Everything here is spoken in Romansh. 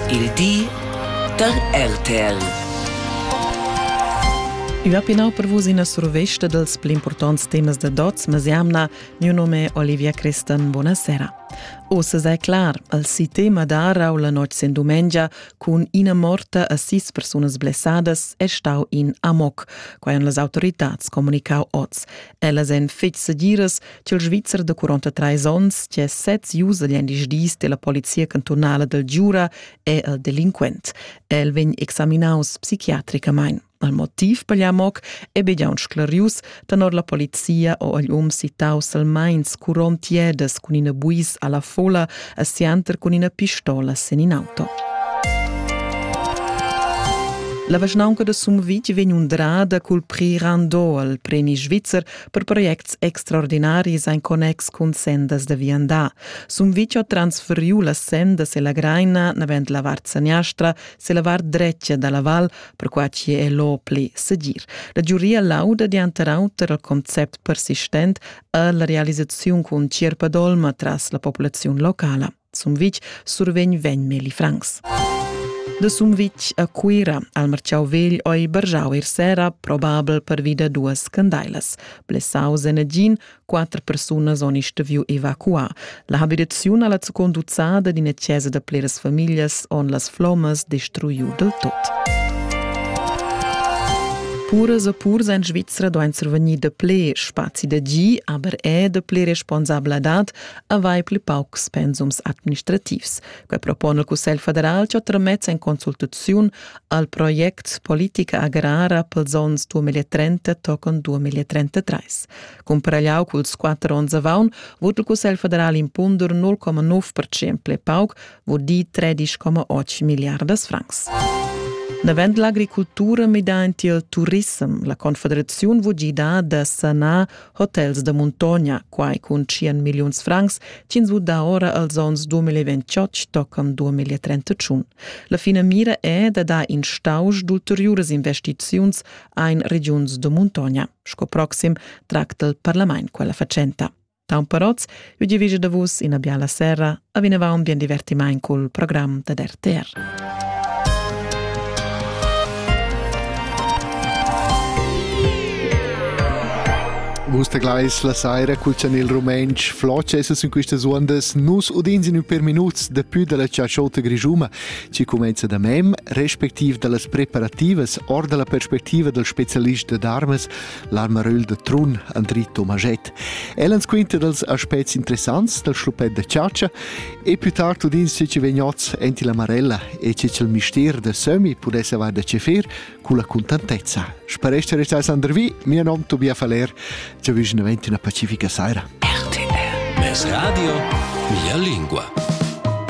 Il di da RTL. Ua pinau per vus ina survesta dels pli importants temas de Dots Masiamna. Mio nome è Olivia Cristan. Buonasera. Ossa sei clar, al si tema da Arau la notg sin dumengia cun ina morta a sis personas blessadas è stau in amok, quai han las autoritats comunicau oz. Ellas en fetg segiras ch'il Svizzer da 43 onns, che sez usa gli dis della polizia cantonala del Giura, è il delinquent. El vegn examinaus psichiatricamain. Al motiv per l'amoc è be giaun sclarius, tenor la polizia o agl um citau salmains curon tiedas cun ina buis alla fola a sianter cun ina pistola sen in auto. La vischnaunca de Sumvitg vegn undrada cul prix Rando al premi svizzer per projects extraordinaris en connex cun sendas da viandar. Sumviccio transferiu las sendas e la greina navend la vart saniastra se la vart drecia dalla val, perquai che è lo pli segir. La giuria lauda dianter auter il concept persistent alla realisazione cun Cirpadolma tras la popolazione locala. Sumvitg survegn vegn Meli Franks. De Sumvitg a Cuira al marciau vegl oi bargiau ir sera, probabel per vida duas candailas. Blessaus en agin, quattro persunas oni stuviu evacuar. La habitaziun alla conduzzada d'ina chiesa de pleras familias on las flomas destruiu del tot. Puras e purs en Svizzera doan survegnir de ple spazi da gi, aber è de ple responsabladad avair pli paucs pensums administrativs. Quai propone il Cussegl federal che tramets en consultaziun al project Politica agrara pels ons 2030 tocan 2033. Cum pragliau culs quatter ons avaun, vot il Cussegl federal impunder 0,9% pli pauc, vot di 13,8 miliardas francs. Davent l'agricultura mida enti il turissem. La Confederaziun vò gidar da sanar Hotels da muntogna, quai cun 100 milliuns francs, tienzu da ora als onns 2028 toccam 2031. La finamira è da dar in stausch d'ulteriuras investiziuns ein regiuns da muntogna. Sco proxim tracta il parlament quella facenta. Taun Parotz Eu giavischa da vus ina biala sera, a vinavant bien divertimaint cul program da RTR. Gusta Gleis la saira cul chanel rumentsch floce essas in quistas undas nus udins in ün per minuts da pü dalla ciaciota grigiuma chi comenza da mem respectiv da las preparativas or da la perspectiva dal specialist da darmas l'armaröl da Trun Andri Tomaschett. El ans quinta dals aspects interessants dal schluppet da chatscha e più tard udins che ci vegn oz enti la Marella e che c'è il mistier da Sömi pudesse avar da cefir con la contentezza. Sparesce restai Sandervi, mio nom Tobias Faller, ci avvicina una pacifica sera. RTL. Radio, mia lingua.